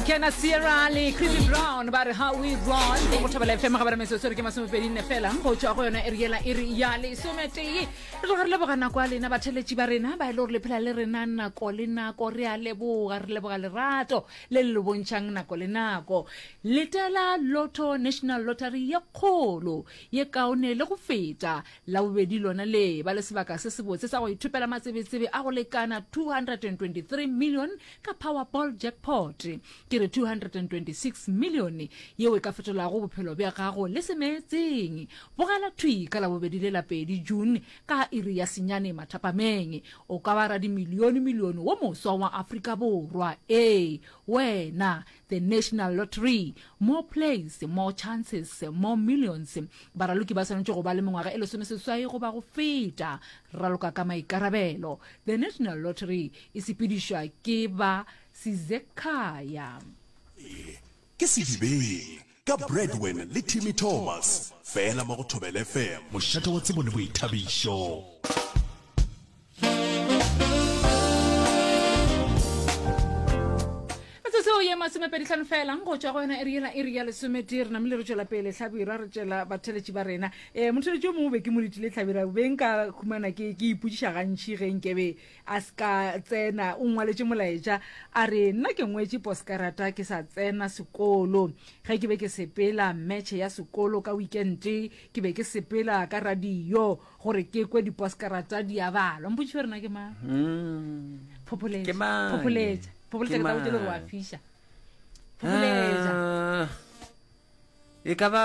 kena sierra le creepy brown ba re how we run go go thobela fm ga ba re metsotso re ke masomepedi nne fela go tswa go yone e re yela e re ya lesometee re tloga re leboga nako ya lena batheletši ba rena ba e le gore le phela le rena nako le nako re a leboga re leboga lerato le le lo bontšhang nako le nako letela lotto national lottery ye kgolo ye kaone le go feta la bobedi lona le ba le sebaka se sebotse sa go ithopela matsebetsebe a go lekana 223 million ka Powerball jackpot. Ke re 226 milione yeo e ka fetolago bophelo bja gago le se meetseng. Bogela thwi ka Labobedi le la pedi, June, ka iri ya senyane mathapameng. O ka ba radimilione-milione wo moswa wa Afrika Borwa. Ee, wena! The National Lottery, More plays, more chances, more millions. Baraloki ba swanetše go ba le mengwaga e lesomeseswai goba go feta. Raloka ka maikarabelo. The National Lottery e sepedišwa ke ba Sizekhaya. Ke sedibeng ka Bradwin le Timmy Thomas fela mo go Thobel FM. Mošate wa tsebo le boithabišo. o ye masomepedi tlhano fela go tswa go yona e riela e ria lesome tee re namile re tswela pele tlhabirwa re tswela batheletši ba rena um motheletši o mongwe be ke mo letile tlhabira beng ka humana ke ipotsiša gantšhi ge nkebe A se ka tsena. O ngwaletše molaetša, a re, Nna ke ngwetše poskarata ke sa tsena sekolo. Ge ke be ke sepela metšhe ya sekolo ka wikente, ke be ke sepela ka radio gore ke kwe diposkarata di a balwa. Mpotšiše gore na ke mang? Phopholetša. Ke mang? Phopholetša. Phopholetša Ke ke tla botša le gore wa mang? fiša. Phopholetša. Ah, e ka ba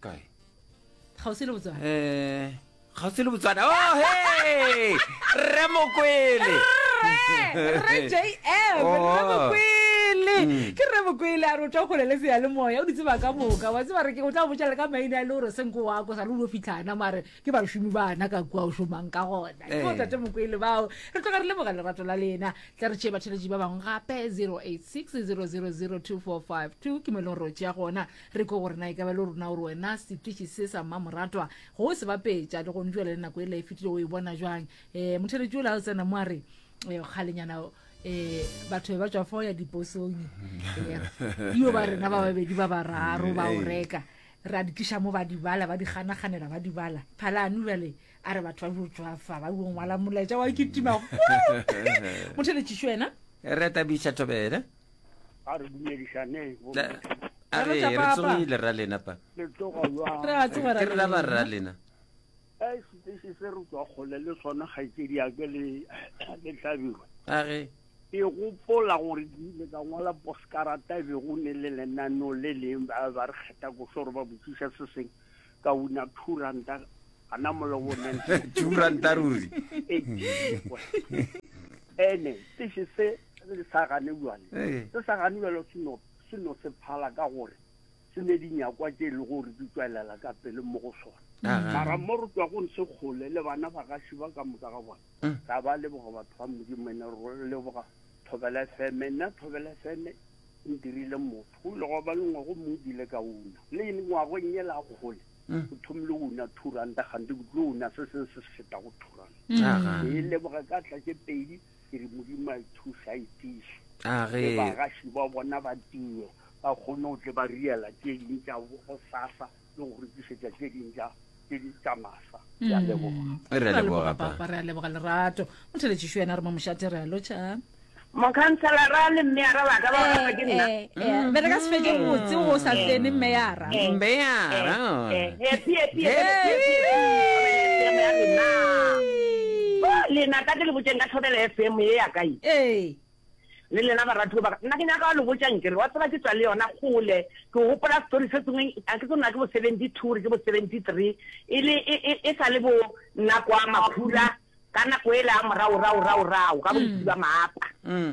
kae kgauswi le botswana um kgauswi le botswana o oh, he rre mokwele mm. ke re bokwele a re o tla gole le seya le moya o ditseba ka moka wa tseba re ke o tla botsela ka maina a e le gore senko wa ko sa le o fitlhana mare ke bašomi bana ka kua o šomang ka gona ke o eh. tate mokwele bao re tloga re leboga lerato la lena tla re tšee batheletši ba bangwe gape 086 000 2452 ke mo e leng gore o tšea gona Re kwe gore na e ka ba le rona gore wena setiši se sa mmamoratwa go o se bapetša le gone jwale le nako e la e fetile o e bona jwang. Um motheletši o la o tsena mo a re um kgalenyana um batho be ba tswa fao ya diposong um yo ba rena ba babedi ba bararo ba o reka ra di tliša mo ba di bala ba di ganaganela ba di bala phalane jale a re batho ba jo tswafa ba jo ngwala molaetša wa kitima motheletšiši wena re tabiša thobele a re dumedišaneng a re re tsogile ra lena pa le tsoga jwang re a tsoga ra lena ba ra lena a e sitse se re tswa gole le sona ga itse di ake le le tlabirwe a re e gopola gore di le ka ngwala poskarata be go ne le lenano le leng ba ba re kgetha go sore ba botsiša se seng ka una two ranta ana molobo two ranta ruri ene se se se le sa gane bjale ee. se sa gane bjale se no se no se phala ka gore se ne di nyakwa tše e le gore di tswelela ka pele mo go sona mara mo re tswa go se kgole le bana ba gaši ba ka moka ga bona mm. ra ba leboga batho ba modimo ne re leboga thobela fm nna thobela fm e ntirile motho go ile go ba le ngwago mo dile ka una le ene ngwagong e la kgole mm. go thomile una two ranta gante ke tlo una se seng se se feta go two ranta e leboga ka tla ke pedi ke re modimo a ithuša a itiše le bagaši ba bona ba tiye ba kgone go tle ba riela tše ding tša go sasa le go rekišetša tše ding tša tše di tša masa ya mm. leboga re a leboga papa re a leboga lerato mo theletšišo yena re mo mošate re a lotšha mokhanselara le mmeara ba ka ba rapa ke nna eh, eh, eh, mm. be re ka se fetse botse go sa tsene mmeara Mbeara. lena ka ke le botseng ka tlhobela fm ye ya kae ee le lena baratuo baka nna ke nyaka wa lo botsang kere wa tseba ke tswa le yona gole ke gopola story se sengwe a ke tsona ke bo seventy two ke bo seventy three e le e, e, e sa le bo nna kwa makhura ka nako e le a moraorao raorao ka bontsi ba maapa mm.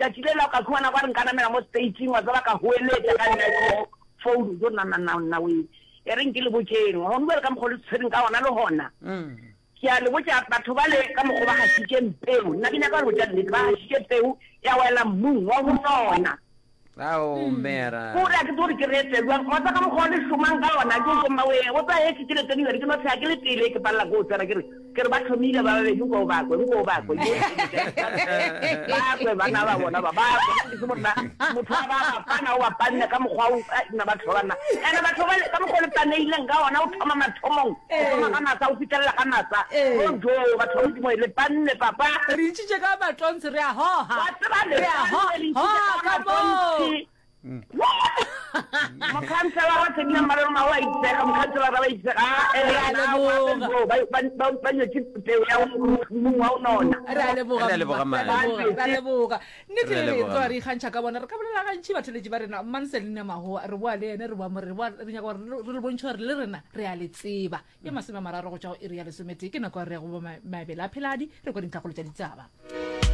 Tšatši le leo ka humana ba re nka namela mo stage-ing, wa tseba, ka hoeletša ka yona phone, jo nna, nna, nna, nna wee, e reng ke le botšeng, gomme bjale ka mokgwa o le tshwereng ka gona le gona, ke a le botša, batho bale ka mokgwa ba gašitšeng peu, nna ke nyaka go le botša nnete, ba gašitše peu, ya wela mmung wa go sona. Ao, Mera! Ko re, a ke tsebe gore ke reetse bjang, wa tseba ka mokgwa o le šomang ka gona, jo, jo, mmawee, o tseba, ge ke tšeletše New York, ke no tšhega ke le pele, ke palela ko go tsena, ke re, Ke re ba thomile ba babedi nko o bakwe, nko o bakwe, yo ke mo jang ka ntle. Ba kwe banna ba bona ba, ba kwe. Nna ke se monna, motho a ba bapana, o bapanne ka mokgwa o, ai, nna batho ba banna. And-e batho bale, ka mokgwa o le paneileng ka ona, o thoma mathomong, o thoma ga masa, o fitelela ga masa. Bonjo, batho ba Modimo, le panne, papa. Re itšitše ka matontshe, re a hoha, re a ho, hoha ka moo. mm. mokhanselara wa tshedi ya mmaleloma o a itsega mokhanselara ba itsega ba nyetse peo ya mong wa o nona re a leboga nnete e re tloa re ikgantšha ka bona re ka bolela gantšhi batholetši ba rena manselina magoa re boa le ene re boa more re nyaka gore re le bontšhe gore le rena re a le tseba ke masome a mararo go tšwa go iri ya lesometee ke nako ya re ya go bo mabele a pheladi re kwa dintlhakgolo tša ditsaba